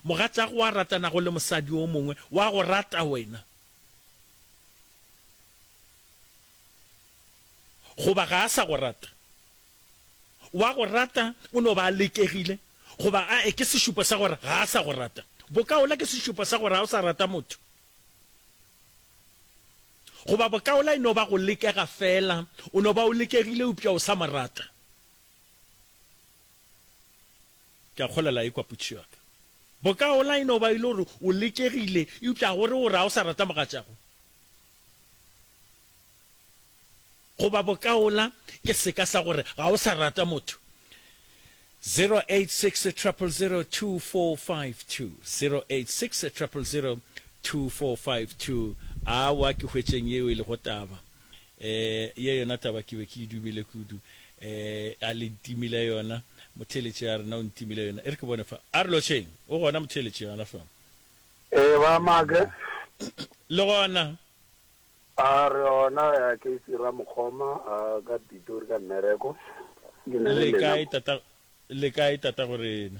Mogatšago a ratanago le mosadi o mongwe o a go rata wena, goba ga a sa go rata. O a go rata, o no ba a lekegile, goba a e ke sešupo sa gore ga a sa go rata. Bokaola ke sešupo sa gore ga o sa rata motho, goba bokaola e no ba go lekega feela, o no ba o lekegile eupša o sa mo rata. Ke a kgolela e kwa potšišo ya ka. Bokaola e no ba e le gore o letšegile, eupša ga o re o re ga o sa rata mogatšago. Goba bokaola ke seka sa gore ga o sa rata motho. 0860002452, 0860002452, Aowa, ke hwetšeng yeo e lego taba. Ee, ye yona taba ke be ke e dumile kudu. Ee, a le ntimile yona. Motheeletši a re, Na o ntimile yona? E re ke bone fa. A re, Lotšheng, o gona motheeletši gana fa? Ee, ba Make. Le gona? A re, Gona ya Casey Ramokgoma, a ka Pitori ka mmereko. Ke na le lena mo. Le kae, Tata-gorena?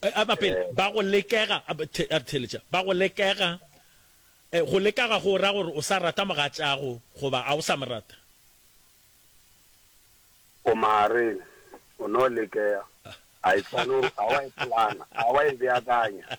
Ba pele, ba go lekega, a re theeletša, ba go lekega. Go leka ga go ra gore o sa rata mogatšago goba ga o sa mo rata. Go magareng, o no lekega. Ga e swane gore a wa e plana, a wa e beakanya.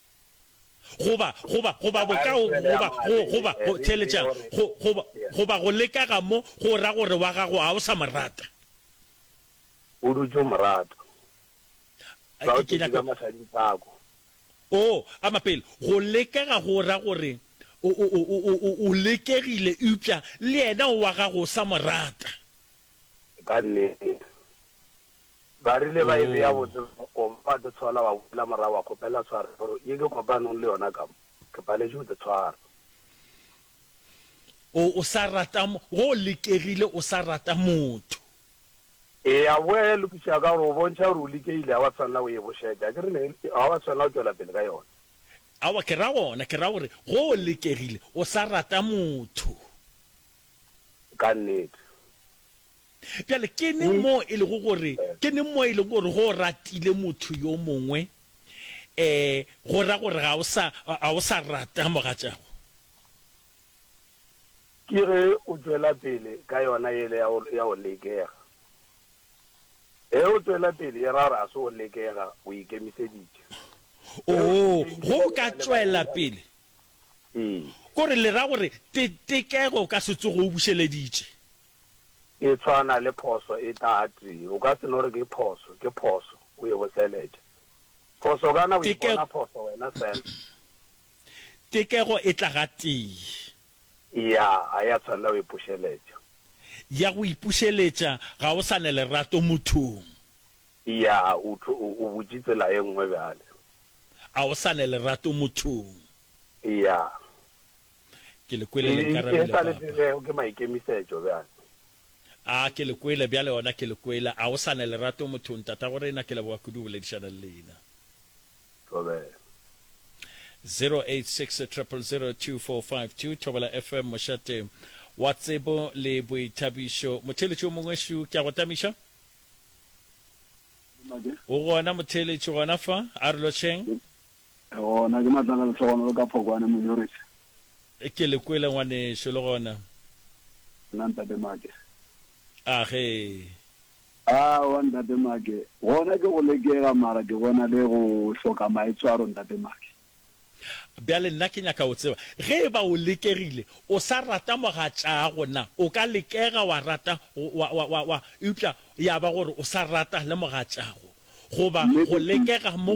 goba, goba, goba bokao, goba, go, goba, go theeletšang, go, goba, goba go leka ga mo, go ra gore wa gago ga o sa mo rata. O dutše o mo rata. Sa o thetše ka masading sako. Oo, a mapele. Go leka ga go ra gore o, o, o, o, o, o lekegile, eupša le yena o wa gago o sa mo rata. Ka nnete. Ba rile ba e bea botse mo koma, wa di tshola, wa boela morago wa kgopela tshwaro gore ye ke kopanong le yona ka mo, ke paletše go di tshwara. O, o sa rata, go lekegile o sa rata motho. Ee, ya boya ya lokišega ka gore o bontšha gore o lekegile, ga wa tshwanela go e bošetša. A ke re ne, ga wa tshwanela go tšwela pele ka yona. Aowa, ke ra gona, ke ra gore go lekegile o sa rata motho. Ka nnete. Bjale, ke neng moo e lego gore, ke neng moo e lego gore ge o ratile motho yo mongwe, e, go ra gore ga o sa, ga o sa rata mogatšago? Ke ge o tšwela pele ka yona yela ya go, ya go lekega. Ge o tšwela pele, e ra gore ga se go lekega, o ikemiseditše. Oo, ge o ka tšwela pele. Ee. Ke gore, le ra gore te, tekego o ka se tsoge o bušeleditše. E tshwana le phoso e tate. O ka se no re ke phoso, ke phoso. O e boseletša. Phoso kana o ipona phoso wena fela. Tekego e tla gatee. Ya, ga ya tshwanela go ipušeletša. Ya go ipušeletša, ga o sa ne lerato mothong. Ya, o tlo, o, o butše tsela e nngwe bjale. A o sa ne lerato mothong. Ya. Ke le kwele le nkarabile, Papa. E sa le pegego ke maikemisetšo bjale. A, ke le kwele, bjale gona ke le kwele. A o sa ne lerato mothong, Tatagorena, ke leboga kudu go boledišana le leina. Thobela. 086 000 2452, Thobela FM, mošate wa tsebo le boithabišo. Motheeletši o mongwe, Shu, ke a go tamiša. O gona motheeletši gona fa? A re lotšheng. Le gona ke matlala lehlogonolo ka phokwane Monyoriša. Ke le kwele ngwanešu le gona. Nna ntate Make. A ge. Aowa ntate Make, gona ke go lekega mara ke bona le go hloka maitshwaro ntate Make. Bjale nna ke nyaka go tseba ge e ba o lekegile o sa rata mogatšaago na o ka lekega wa rata wa, wa, wa, wa eupša ya ba gore o sa rata le mogatšaago goba go lekega mo